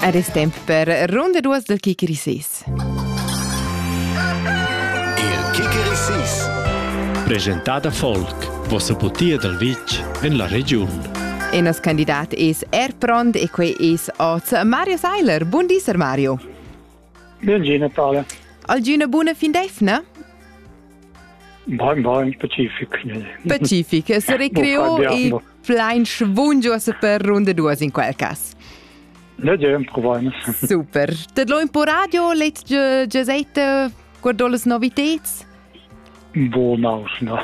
Ed es temp per runda duos dal Kicker Sis. Il Kicker Sis. Presentada Folk, vossa putia dal vitg en la regiun. E nos candidat es er pront e quei es oz Mario Seiler. Bun di, Sir Mario. Ben gi, Natale. Algüna buna fin d'eifna? Bain, bain, Pazifik. Pazifik, se recreò e Plein schvungiuosa per runda duas in quel cas. Leger, provain. Super. Tet lo in po radio, let gesete guardò las noviteds? Buonau, no.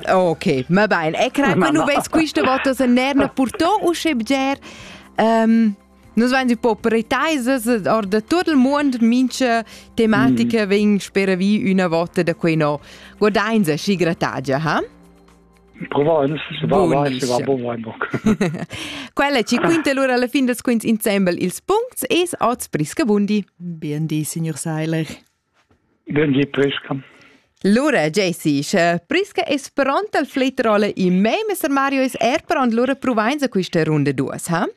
ok, ma bene. E credo che non vedi questa volta se nerna purtò o sche bger. Um, Nus vein un po pretaisas or de tot il mund mincha tematica mm. vegn spera vi una volta da quei no. Guardain se schi gratagia, ha? Provins, Quella ci quinta lura alla fin dels quints insembel ils puncts es oz Briscabundi. Bien di, signor Seiler. Ben di, Prisca. Lura, Jesse, sche Prisca es pronta al flettrolle in me, Mr. Mario es er pront lura provains a questa runda duas, ha?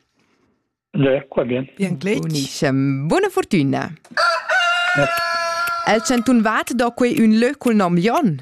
Ja, qua bien. Bien glitch. Buona fortuna. El chantun vat do quei un lö col nom Jon.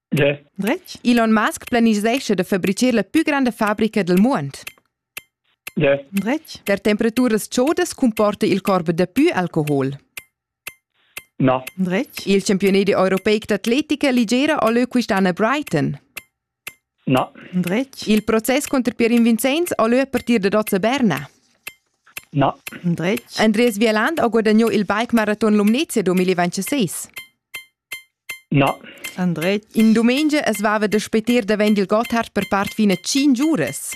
Yeah. Dretg? Elon Musk planisescha da fabricar la più grande fabrica del mondo. Yeah. Dretg? Der temperaturas chaudas comporta il corpo da più alcohol. No. Dretg? Il campionat europeic d'atletica ligera a leu quest'anno a Brighton. No. Dretg? Il proces contro Pier Vincenz a leu a partir da Dozza Berna. No. Dretg? Andreas Wieland ha guadagnato il bike marathon Lumnezia 2026. Na. Andret, in dumengia as vava da spetir davent il Gotthard per part fin a tschinch uras.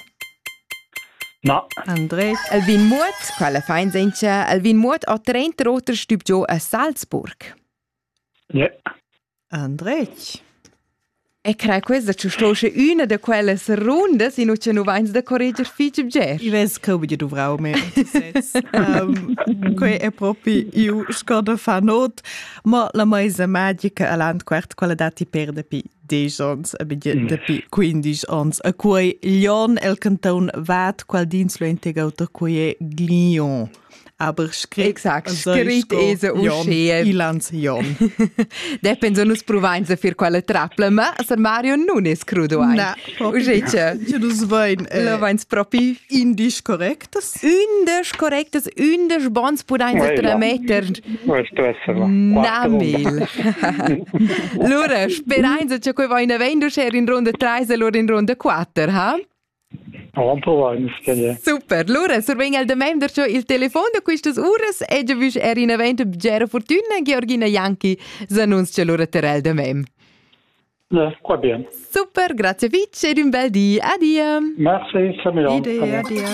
Na. Andret, el vegn muot, quella fain senza, el vegn muot a trenta oter stüb giò a Salzburg. Ne. Andret. E crai questa ci sto sche üna da quelle rundas in ucce nu vains da correger fich bger. I vess ch'eu be dovrau me. Quei è propi iu scoda fa not, ma la maisa magica a l'ant quart quella dati per dapi 10 ons, a bit dapi 15 ons. A quei Lyon el canton vat qual dins lo integauto quei è Glion. Aber scrit, exact, scrit es uschè. Ilans Jon. Deppen so nus provain se fir quella trappla, ma Sir Mario nun es crudo ein. Na, uschè che. Che nus vain. Lo vains propi. Indisch correctes? Indisch correctes, indisch bons pudain se trametter. Questo essere. Na mil. Lura, sperain se che quei vain avendo cher in ronda 3 e lur in ronda 4, ha? Super, lura survegn el damain darcho il telefon da quistas uras e giavüsch er in event bgera fortüna Georgina Janki s'annunzcha lura terel damain. Qua bien. Super, grazie fitch ed un bel di. Adia. Merci, Samuel. Idee, adia.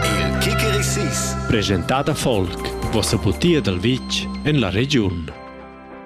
Il Kickerisis, presentata folk, vossa putia dal vitg en la regiun.